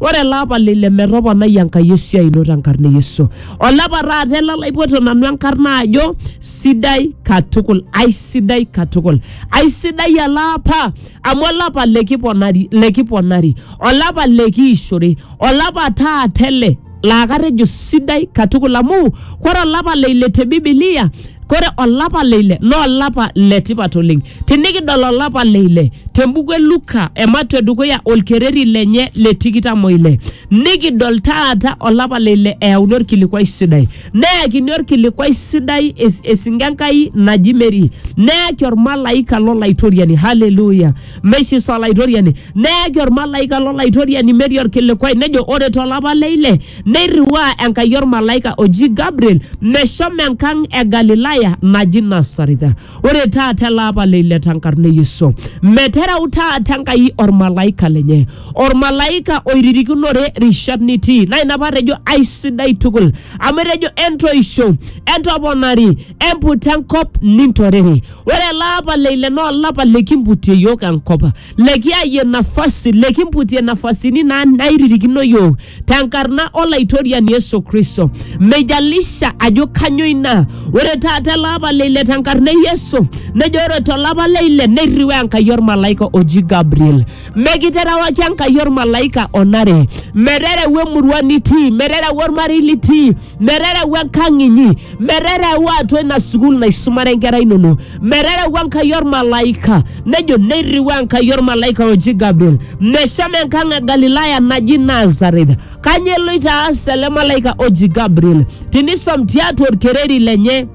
Ore ele apa lile metoponai Enkai esiai ino tenkarna e Yesu. Ole apa taata ele laipoto nanu enkarna ajo sidai katukul, aisidai katukul. Aisidai ele apa amu ole apa likiponari, likiponari, ole apa likiishore, ole apa taata ele laa katejo sidai katukul amu kore olapa le ile te Biblia, kore olapa le ile naa olapa le tipat oleng. Tinikidol olapa le ile te mbuku e Luka ematua e dukuya olkereri lenye le tikitam o ile nikidol taata olapa le ile eyauni olkilikuai sidai neyakini olkilikuai sidai es- esinke Enkai naji Mary neyaki olmalaika lo Laitoriani haleluya meisis Olaitoriani neyaki olmalaika lo Laitoriani Mary olkilikuai nejo ore to lapa le ile neirriwaa Enkai olmalaika oji Gabriel meshomo enkang e Galilaya naji Nasaretha Ore taata ele apa le ile tenkarna e Yesu, metereu taata Enkai olmalaika lenye, olmalaika oiririkinore rishat nitii. Naa ina paatejo aisidai tukul, amu etejo entoisho, entoponari, emputa enkop nintorere. Ore ele apa le ile naa olapa likimputie iyiook enkop. lekiyayie nafasi lekimputie nafasini naa nairirikino yiok tenkarna olaitoriani Yesu Kristo. Meijalisha ajo kanyo ina. Ore taata ele apa le ile tenkarna e Yesu nejo ore tolapa le ile neirriwaa Enkai olmalaika oji Gabriel. Mekiterewaki Enkai olmalaika onare, meterewa emurua nitii, meterewa olmarei litii merereu enkang inyi merereu atua ina sukuul naisumare inkera inono merereu enkai ormalaika nejo neirriu enkai ormalaika oji gabriel meshomo enkang e galilaya naji nazareth kanyio eloito aas ele malaika oji gabriel tinisom tiatua orkereri lenye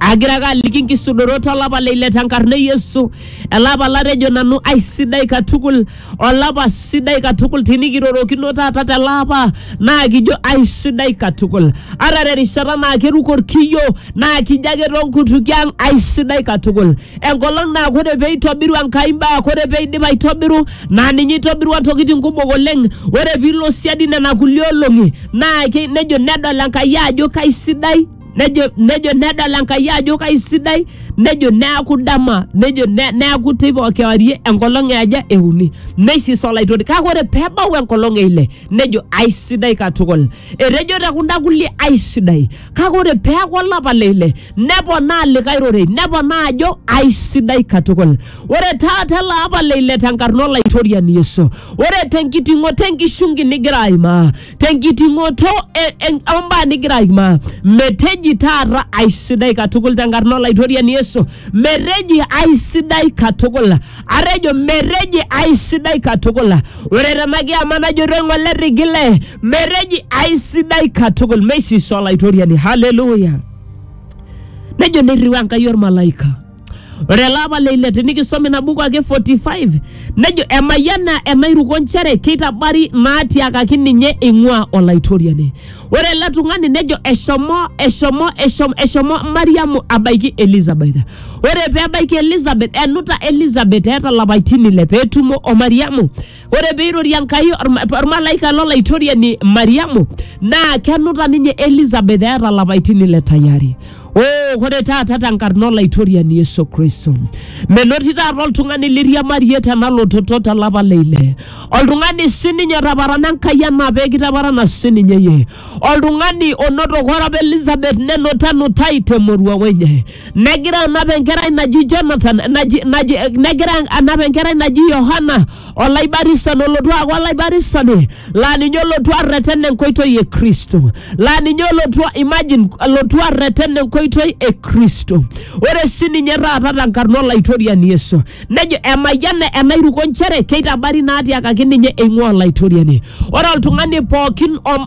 agira ake aliki nkisudorot olapa le ile tenkarna e yesu elapa latejo nanu aisidai katukul olapa sidai katukul tinikirorokino taata tele apa naa kijo aisidai katukul ata terishata naa keruko orkiyo naa kijo ake tonkutukie ang aisidai katukul enkolong naa kore peitobiru Enkai imbaa kore peidip aitobiru naa ninye itobirua ntokitin kumok oleng ore piilo siadi nena kulie olong'i naa ke- nejo nedol Enkai ajo kaisidai nejo nejo nedol enkai ajo kaisidai nejo neaku dama nejo ne, neaku teipa kewarie enkolong eaja euni neisis olaitori kake ore peebau enkolong eile nejo aisidai katukul etejo te kunda kulie aisidai kake ore peaku olapa leile neponaa likae rorei neponaa ajo aisidai katukul ore taata ele apa leile tenkarna olaitoriani yesu ore tenkiting'oto enkishungi nigira aimaa tenkiting'oto e- en- ombaa nigira aimaa meteji taata aisidai katukul tenkarna olaitoriani yesu meteji aisidai katukul atejo meteji aisidai katukul ore tena kiama najoto eng'ole rigile meteji aisidai katukul meisisa olaitoriani haleluya nejo neirriu enkai ormalaika Ore ele apa le ile tinikisom ina buku ake 45 nejo emayiana enairuko nchere keitabari naatiakaki ninye eing'ua Olaitoriani. Ore ele tung'ani nejo eshomo eshomo eshomo eshomo Mariamu abaiki Elizabeth. Ore pee ebaiki Elizabeth enuta Elizabeth eeta lapaitin ile pee etumo o Mariamu ore peirorie enkai orma- ormalaika lolaitoriani mariamu naa kenuta ninye elizabeth eeta lapaitin ile tayari Oh, ore taata tenkarna olaitoriani yesu kristo menoti taata oltung'ani liriamarie tena lototo tolapa leile oltung'ani sininye otaparana enkai anaa pekitaparana sininye yie Oltung'ani onotoko orap Elizabeth nenuta enutai te moruao enye. Negira anap enkerai naji Jonathan naji, naji, negira anap enkerai naji Yohana olaibarisani olotu aaku olaibarisani laa ninye olotu arreten enkoitoi e Kristo. Laa ninye olotu imagine olotu arreten enkoitoi e Kristo. Ore sininye taata tenkarna Olaitoriani Yesu. Nejo emayiana enairuko nchere keitabari naatiakaki ninye eing'ua Olaitoriani. Ore oltung'ani pookin om